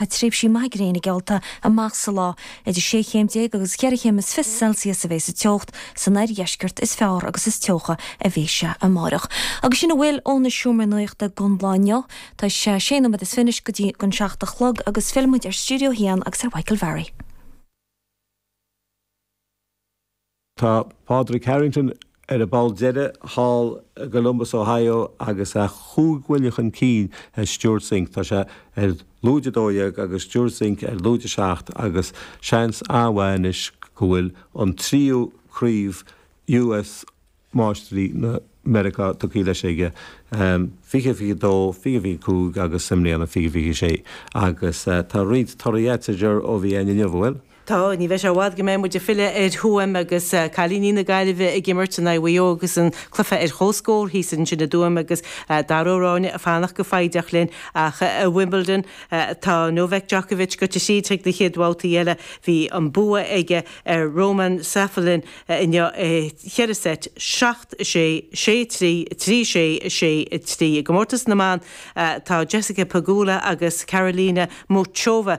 a tréimhsí maithe gréine geallta amach sa lá, idir sé chéim déag agus cheithre chéim is fiche Celsius a bheidh sa teocht san oirdheisceart is fearr agus is teocha a bheidh sé amárach. Agus sin a bhfuil ó na seomraí nuachta don lá inniu. Tá sé sé nóiméad is fiche go dtí an seacht a chlog agus fillfidh muid ar Stiúideo a hAon agus ar Mhichael Varry. Tá Pádraig Harrington ar an bpoll deiridh thall i gColumbus, Ohio, agus é cúig bhuille chun cinn ar Stewart Cink. Tá sé ar lúide a dó dhéag agus Stewart Cink ar lúide a seacht agus seans an-mhaith anois go bhfuil an tríú craobh US Máistirí na Meiriceá tugtha leis aige, fiche, fiche a dó, fiche, fiche a cúig agus i mbliana fiche, fiche a sé. Agus tá roinnt torthaí eile againn ó Wimbledon inniu, an bhfuil? Tá, ní bheidh sé i bhfad go mbeidh muid ag filleadh ar Thuaim agus cailíní na Gaillimhe ag imirt in aghaidh Mhaigh Eo agus an cluiche ar chomhscór thíos ansin i dTuaim agus Dara Ó Ráinne ag fanacht go foighdeach linn. Ach i Wimbledon, tá Novak Djokovic gaibhte síos chuig an gcéad bhabhta eile. Bhí an bua aige ar Roman Safiulin inniu i cheithre seit, seacht, sé, sé, trí, trí, sé, sé, trí. I gcomórtas na mban, tá Jessica Pegula agus Karolina Muchova,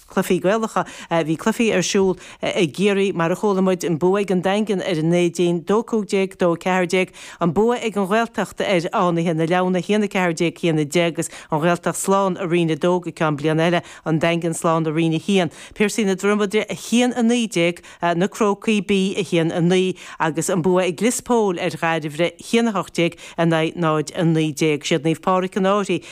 cluichí Gaelacha. Bhí cluichí ar siúl i gCiarraí, mar a chuala muid, an bua ag an Daingean ar an Neidín, dó 15, dó 14, an bua ag an Ghaeltacht ar Fhánaithe na Leamhna, haon 14, haon 10, agus an Ghaeltacht slán i Roinn 2 go ceann bliana eile, an Daingean slán i Roinn 1, Piarsaigh na Dromoda, haon 19, na Crócaí B 1 9 agus an bua ag Lios Póil ar Dhairbhre 1 18 in aghaidh 0 19. Siad Naomh Pádraig an Fhairche,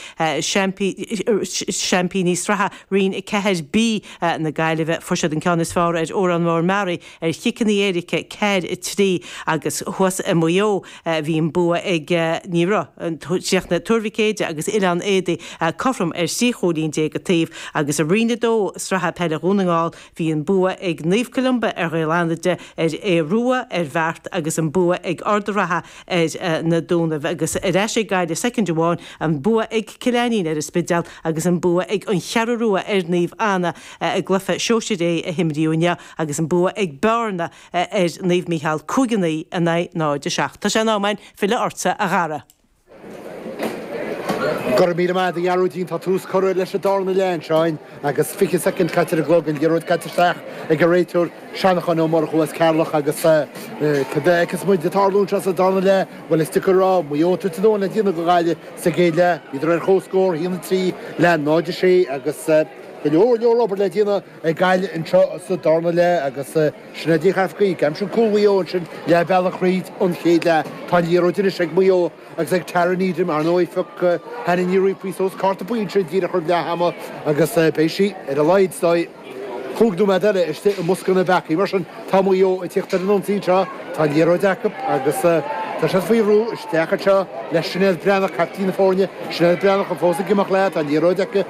seaimpíní sraithe Roinn 4B na Gaillimhe, fuair siad an ceann is fearr ar Órán Mór Meáraí ar chiceanna éirice, 4 3, agus thuas i Maigh Eo bhí an bua ag Iorras. Chríochnaigh Tuar Mhic Éide agus Oileán Éadaí cothrom ar thrí chúilín déag an taobh agus i Roinn 2 Sraithe Peile Dhún na nGall, Bhí an bua ag Naomh Columba ar Ghaeil Fhánada, ag Aodh Rua, ar Bheart, agus an bua ag Ard a' Ratha ar na Dúnaibh, agus ar ais go Gaillimh soicind amháin, an bua ag Cill Aithnín ar an Spidéal, agus an bua ag An Cheathrú Rua ar Naomh Anna i gcluiche sóisir A a himríodh inniu, agus an bua ag Bearna ar Naomh Micheál, 5-9 in aghaidh 0-7. Tá sé in am againn filleadh ortsa, a Dhara. Go raibh míle maith a'd a Ghearóidín, tá tús curtha leis an dárna leath ansin agus fiche soicind caite ar an gclog, an liathróid caite isteach ag an réiteoir Seanachán Ó Murchú as Ceatharlach agus céard a fheicfeas muid ag tarlú anseo sa dárna leath, bhuel is deacair a rá, Maigh Eo tar éis dó le déanamh don Ghaillimh sa gcéad leath, bhíodar ar chomhscór, 1, 3, le 0, 6 agus go leor leor obair le déanamh ag Gaillimh anseo sa dárna leath agus. Sin a d'fhéach as Gaeilge. Ansin cúl Mhaigh Eo, ansin leath bealach thríd an chéad leath. Tá an liathróid anois ag Maigh Eo agus ag Tara Needham, ar ndóigh. Phioc Hannah Ní Riain suas cárta buí ansin díreach roimh leath ama agus beidh sí, ar a laghad, ar ndóigh, cúig nóiméad eile istigh i mbosca na bpeacaí. Mar sin, tá Maigh Eo ag tíocht ar an ionsaí anseo. Tá an liathróid acu agus tá siad faoi bhrú. Isteach anseo le Sinéad Breathnach, caiptín na foirne. Sinéad Breathnach, fós ag imeacht léi? Tá an liathróid aici.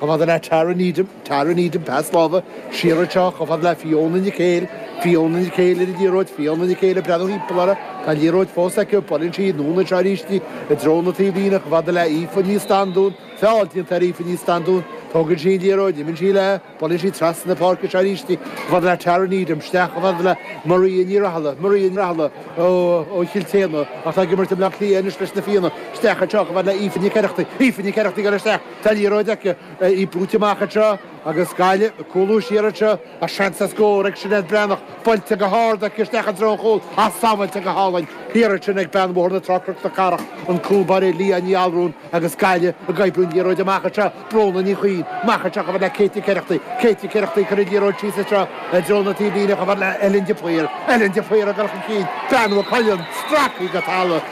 chomh fada le Tara Needham, Tara Needham, pas láimhe siar anseo, chomh fada le Fiona Nic Éil, Fiona Nic Éil ar an liathróid, Fiona Nic Éil ag breathnú thimpeall uirthi, tá an liathróid fós aici, buaileann sí anuas anseo arís í, i dtreo na taobhlíne, chomh fada le Aoife Ní Standún, feall déanta ar Aoife Ní Standún, tógann sí an liathróid, imíonn sí léi, buaileann sí trasna na páirce anseo arís í, chomh fada le Tara Needham, isteach chomh fada le Maria Ní Rathaille, Maria Ní Rathaille ó, ó Chill tSéadna ach tá ag imirt i mBleá Cliath anois leis na Fianna, isteach anseo chomh fada le Aoife Nic Oireachtaigh, Aoife Nic Oireachtaigh ar an, Tá an liathróid aici, í brúite amach anseo agus Gaillimh ag cúlú siar anseo ach seans ar scór ag Sinéad Breathnach, buailte go hard aici isteach i dtreo an chúil ach sábháilte go hálainn thiar ansin ag bean Bhóthar na Trá-Cnoc na Cathrach, an cúlbáire Leah Ní Allúráin agus Gaillimh ag oibriú an liathróid amach anseo, Bróna Ní Chuinn, amach anseo chomh fada le Katie Carrickdy, Katie Carrickdy ag cur an liathróid síos anseo i dtreo na taobhlíne chomh fada le Ellen de Paor, Ellen de Paor ag gabháil chun cinn, bean Mhaigh Cuilinn, stractha go talamh.